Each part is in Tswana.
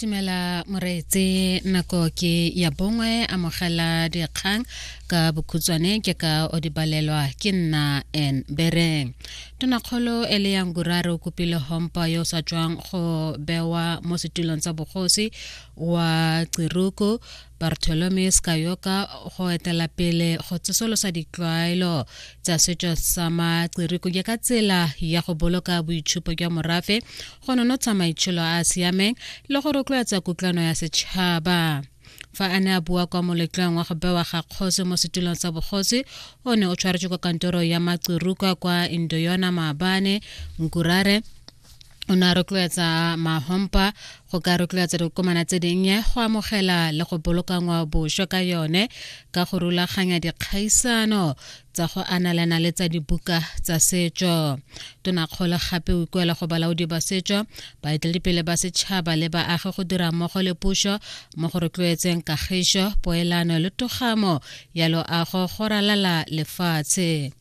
tumela moreetse nako ke ya bongwe amogela dikgang ka bokhutswane ke ka o di balelwa ke nna en bereng tonakgolo e le yang gurare o kopile hompa yo o sa tswang go bewa mo setulong tsa bogosi wa tsiruko bartolome skayoka go etela pele go tsosolosa ditlwaelo tsa setšo sa matsiriko ke ka tsela ya go boloka boitshupo jwa morafe go nonotsha maitsholo a a siameng le go rotloetsa kutlwano ya setšhaba fa a ne a bua kwa moletlong wa go bewa ga kgosi mo setulong sa bogosi o ne o tshwaretswe kwa kantoro ya matsirukwa kwa indoyona maabane nkurare o ne a rotloetsa mahompa go ka rotloetsa dikomana tse dinnye go amogela le go boloka ngwaoboswa ka yone ka go rulaganya dikgaisano tsa go analana le tsa dibuka tsa setso tonakgolo gape o ikuela go balaodi ba setso baeteledipele ba setšhaba le baagi go dira mmogo le puso mo go rotloetseng kagiso poelano le togamo ya loago go ralala lefatshe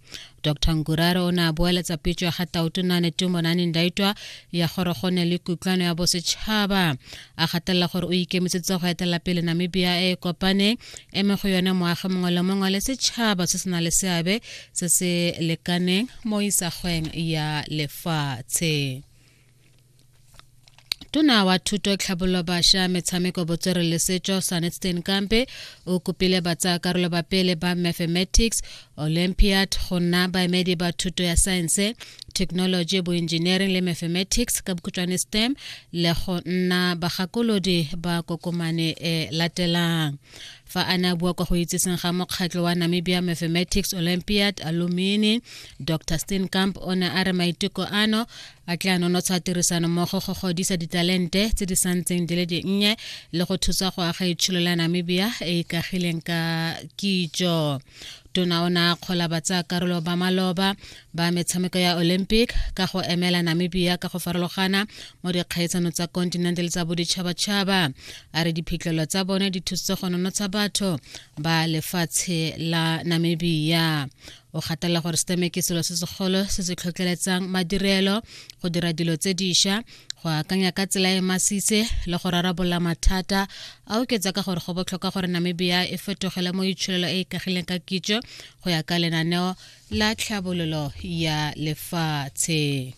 dr nkurare o ne a boeletsa pitso ya ga tautonane tumonane ndaitwa ya gore go ne le kutlwano ya bosetšhaba a gatelela gore o ikemisitse go etela pele namibia e e kopaneng eme go yone moagi mongwe le mongwe le setšhaba se se na le seabe se se lekaneng mo isagweng ya lefatshe tona wa thuto tlhabololo basha metshameko botswere le setso sanetstein kampe o kopile batsayakarolo ba pele ba mathematics olympiad go nna baemedi ba thuto ya saense technology boengineering le mathematics ka bokhutšwane stem le go nna bagakolodi ba kokomane e latelang fa a ne a bua kwa go itseseng ga mokgatlho wa namibia mathematics olympiad alumini dr steenkamp o ne a re maiteko ano a tle a nonotsha tirisanommogo go godisa ditalente tse di santseng di le dinnye le go thusa go aga itsholo la namibia e ikagileng ka kitso tona o ne a kgola batsayakarolo ba maloba ba metshameko ya olympic ka go emela namibia ka go farologana mo dikgaitsano tsa kontinente le tsa boditšhabatšhaba a re diphitlhelo tsa bone di thusitse go nonotsha batho ba lefatshe la namibia o gatelela gore seteme ke selo se segolo se se tlhotlheletsang madirelo go dira dilo tse diša go akanya ka tsela e masise le go rarabolola mathata a oketsa ka gore go botlhokwa gore namibia e fetogele mo itsholelo e e kagileng ka kitso go ya ka lenaneo la tlhabololo ya lefatshe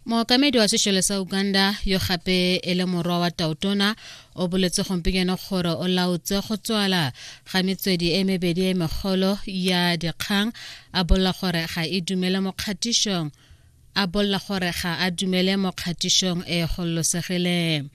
mookamedi wa sešole sa uganda yo gape e le morwa wa tautona o boletse gompieno gore o laotse go tswala ga metswedi e mebedi e megolo ya dikgang a bolla gore ga e dumele mo kgatišong a bolla gore ga a dumele mo kgatišong e gololosegileng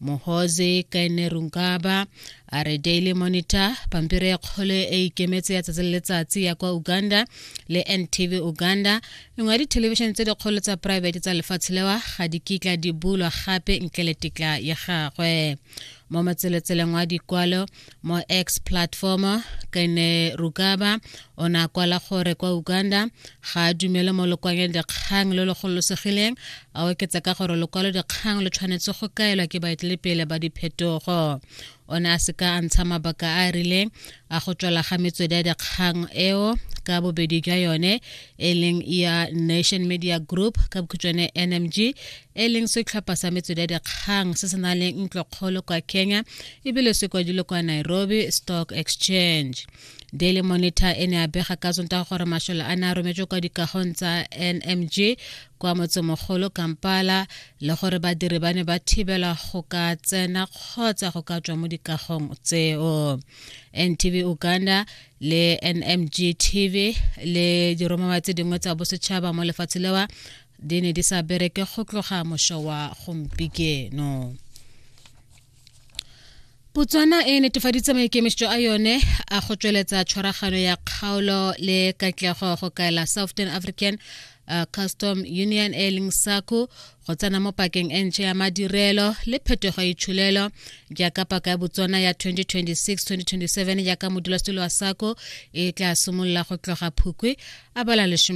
mohoze kaine runkaba a re daily monitor pampiri ya kgolo e e ikemetse ya tsatsi le letsatsi ya kwa uganda le ntv uganda nngwe ya dithelebišene tse dikgolo tsa private tsa lefatshe lewa ga di kitla di bulwa gape ntle le tetla ya gagwe mo motselotseleng wa dikwalo mo x platform kene rukaba o ne a kwala gore kwa uganda ga a dumele mo lokwaleng dikgang lo lo gololosegileng a oketsa ka gore lokwalo dikgang lo tshwanetse go kaelwa ke baetelepele ba diphetogo o ne a seka a ntsha mabaka a a rileng a go tswala ga metswedi ya dikgang eo ka bobedi jwa yone e leng ya nation media group ka bokhutshwane nmg e leng setlhopha sa metswedi ya dikgang se se nang le ntlokgolo kwa kenya ebile se kwadilwe kwa nairobi stock exchange daily monitor e ne a bega ka tsontaga gore mashole a ne a rometswe kwa dikagong tsa nmg kwa motsemogolo kampala le gore badiri ba ne ba thibela go ka tsena kgotsa go ka tswa mo dikagong tseo ntv uganda le nmg tv le diromawa tse dingwe tsa bosetšhaba mo lefatshe lewa di ne di sa bereke go tloga mošo wa gompikeno Botswana e netefaditse maikemišetšo a yone a go tšweletsa tshwaragano ya kgaolo le katlego go kaela southern african uh, custom union e leng saco go tsena mo pakeng e ntšha ya madirelo le phetogo e tšholelo jaaka paka ya botswana ya 2026-2027 jaaka modulasetilo wa saco e tla simolola go tloga phukwi a bala lesome